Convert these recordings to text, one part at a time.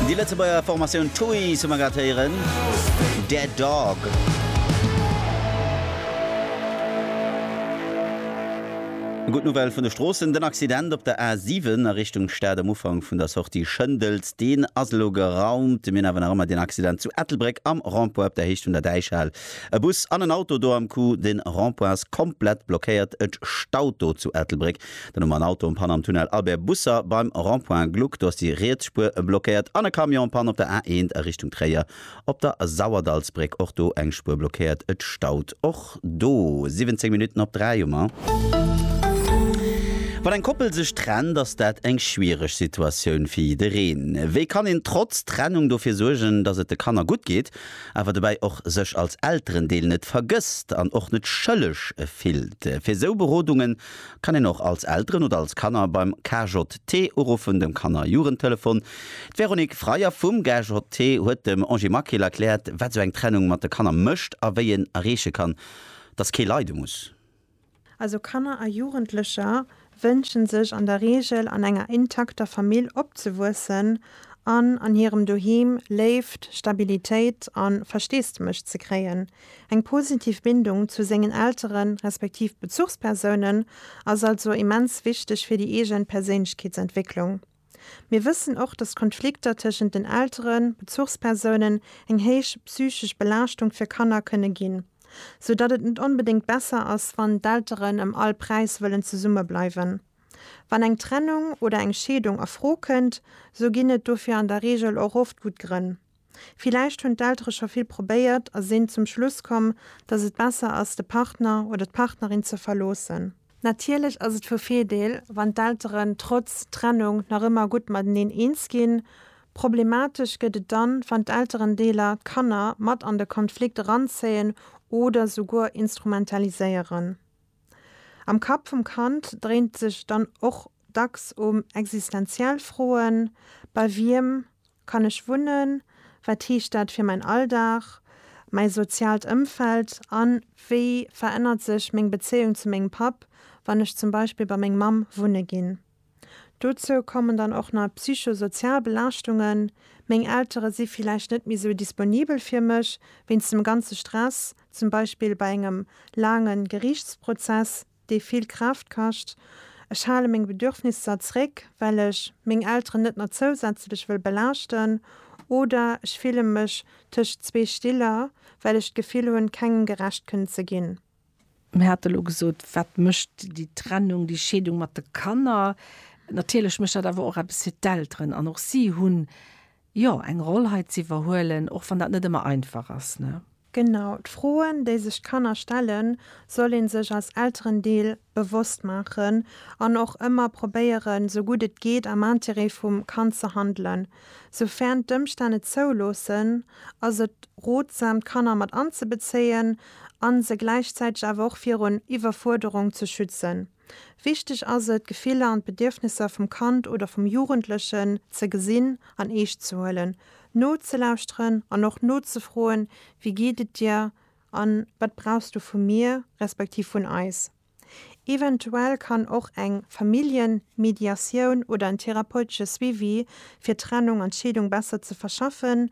Déi Lëtzebuerger Formatioun Toys hu mer grad héieren, Dead Dog. Gutt Nouvelle vun de Stroossen, Den Accident op der A7 a Richtung Stad am Ufank vun der Sortie Schëndels, deen ass elo geraumt. Mir hunn awer nach ëmmer deen Accident zu Ettelbréck am Rond-point op der Héicht vun der Däichhal. E Bus an en Auto do am Coup. De Rond-point ass komplett blockéiert. Et staut do zu Ettelbréck. Den Numm an Auto um Panne am Tunnel Albert Busser beim Rond-point Gluck. Do ass déi riets Spuer blockéiert. An e Camion Panne op der A1 a Richtung Tréier op der Sauerdallsbréck. Och do eng Spuer blockéiert. Et staut och do. 17 Minutten op 3 hu mer. Wann eng Koppel sech trennt, ass dat eng schwiereg Situatioun fir jiddereen. Wéi kann een trotz Trennung dofir suergen, dass et de Kanner gutt geet, awer dobäi och sech als Elterendeel net vergësst an och net schëlleg fillt? Fir esou Berodungen Kann een och als Elteren oder als Kanner beim KJT uruffen, dem Kanner Jugendtelefon. D'Véronique Freyer vum GJT huet dem Angie Maquil erkläert, wat sou eng Trennung mat de Kanner mécht a wéi een erreeche kann, dass kee leide muss. Also Kanner a Jugendlecher wënsche sech an der Reegel an enger intakter Famill opzewuessen an an hirem Doheem Léift, Stabilitéit a Versteesdemech ze kréien. Eng positiv Bindung zu sengen Elteren, respektiv Bezuchspersounen, ass also immens wichteg fir déi eegen Perséinlechkeetsentwécklung. Mir wëssen och, dass Konflikter tëschent den Elteren, Bezuchspersounen, eng héich psychesch Belaaschtung fir Kanner kënne ginn, sou datt et net onbedéngt besser ass, wann d'Elteren ëm all Präis wëllen zesumme bleiwen. Wann eng Trennung oder eng Scheedung a Fro kënnt, sou ginn et dofir an der Reegel och oft gutt Grënn. Villäicht hunn d'Eltere scho vill probéiert a sinn zum Schluss komm, dass et besser ass, de Partner oder d'Partnerin ze verloossen. Natierlech ass et vu Virdeel, wann d'Elteren trotz Trennung nach ëmmer gutt mateneen eens ginn. Problematesch gëtt et dann, wann d'Elterendeeler d'Kanner mat an de Konflikt eranzéien oder souguer instrumentaliséieren. Am Kapp vum Kand dréint sech dann och dacks um existenziell Froen, Bei wiem Kann ech wunnen? Wat heescht dat fir mäin Alldag, mäi soziaalt Ëmfeld? An wéi verännert sech meng Bezéiung zu mengem Papp, wann ech zum Beispill bei meng Mamm wunne ginn? Dozou kommen dann och nach psychosozial Belaaschtungen, meng Eltere si villäicht net méi sou disponibel fir mech, wéinst dem ganze Stress, zum Beispill bei engem laange Geriichtsprozess. dee vill Kraaft kascht. Ech hale meng Bedürfnisser zréck, well ech meng Elteren net nach zousätzlech wëll belaaschten. Oder ech fille mech tëscht zwee Stiller, well ech d'Gefill hunn, kengem gerecht kënnen ze ginn. Mir hate lo gesot, wat mécht déi Trennung, déi Scheedung mat de Kanner. Natierlech mécht dat awer och eppes fir d'Elteren. An och si hunn Jo, eng Roll hei ze iwwerhuelen, och wann dat net ëmmer einfach ass, ne? Genau, d'Froen, déi sech d'Kanner stellen, soll ee sech als Elterendeel bewosst maachen an och ëmmer probéieren, sou gutt et geet, am Interêt vum Kand ze handelen. Soufern d'Ëmstänn et zouloossen, ass et rotsam, d'Kanner mat anzebezéien a se gläichzäiteg awer och virun Iwwerfuerderung ze schützen. Wichteg ass et, d'Gefiller an d'Bedierfnesser vum Kand oder vum Jugendlechen ze gesinn an eescht ze huelen, nozelauschteren an och nozefroen, Wéi geet et dir? a Wat brauchs du vu mir, respektiv vun eis? Eventuell kann och eng Familljenmediatioun oder en therapeutesche Suivi fir d'Trennung an d'Scheedung besser ze verschaffen,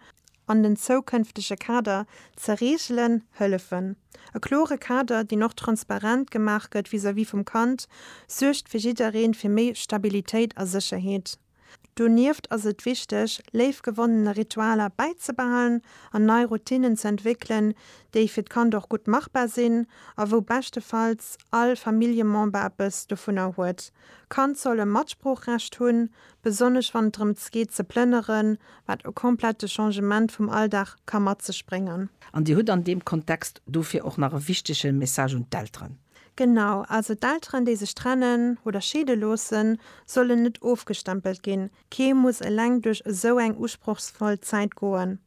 an den zoukënftege Kader ze reegelen, hëllefen. E klore Kader, deen och transparent gemaach gëtt vis-à-vis vum Kand, suergt fir jiddereen fir méi Stabilitéit a Sécherheet. Donieft ass et wichteg, léif gewonnene Ritualer bäizebehalen an nei Routinnen ze entwéckelen, déi fir d'Kand och gutt machbar sinn a wou beschtefalls all Familljemember eppes dovunner huet. Kand soll e Matsproochrecht hunn, besonnesch wann et drëms geet ze plënneren, wat e komplette Changement vum Alldag ka mat sech bréngen. An Dir hutt an deem Kontext dofir och nach e wichtege Message un d'Elteren. Genau, also d'Elteren, déi sech trennen oder scheede loossen, sollen net ofgestempelt ginn. Kee muss eleng duerch esou eng usprochsvoll Zäit goen.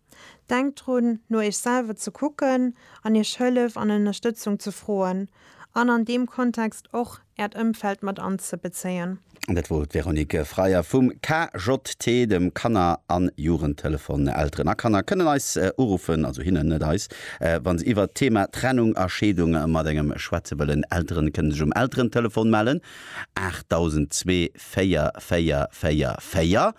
Denkt drun, no Iech selwer ze kucken an Iech Hëllef an Ënnerstëtzung ze froen an an deem Kontext och Äert Ëmfeld mat anzebezéien. Dat wor d'Véronique Freier vum KJT, dem Kanner an Jugendtelefon. Elteren a Kanner kënnen eis uruffen, also hinnen, net eis, wa se iwwert d'Thema Trennung a Scheedung mat engem schwätze wëllen. Elteren kënnen sech um Elterentelefon mellen, 8002 4444.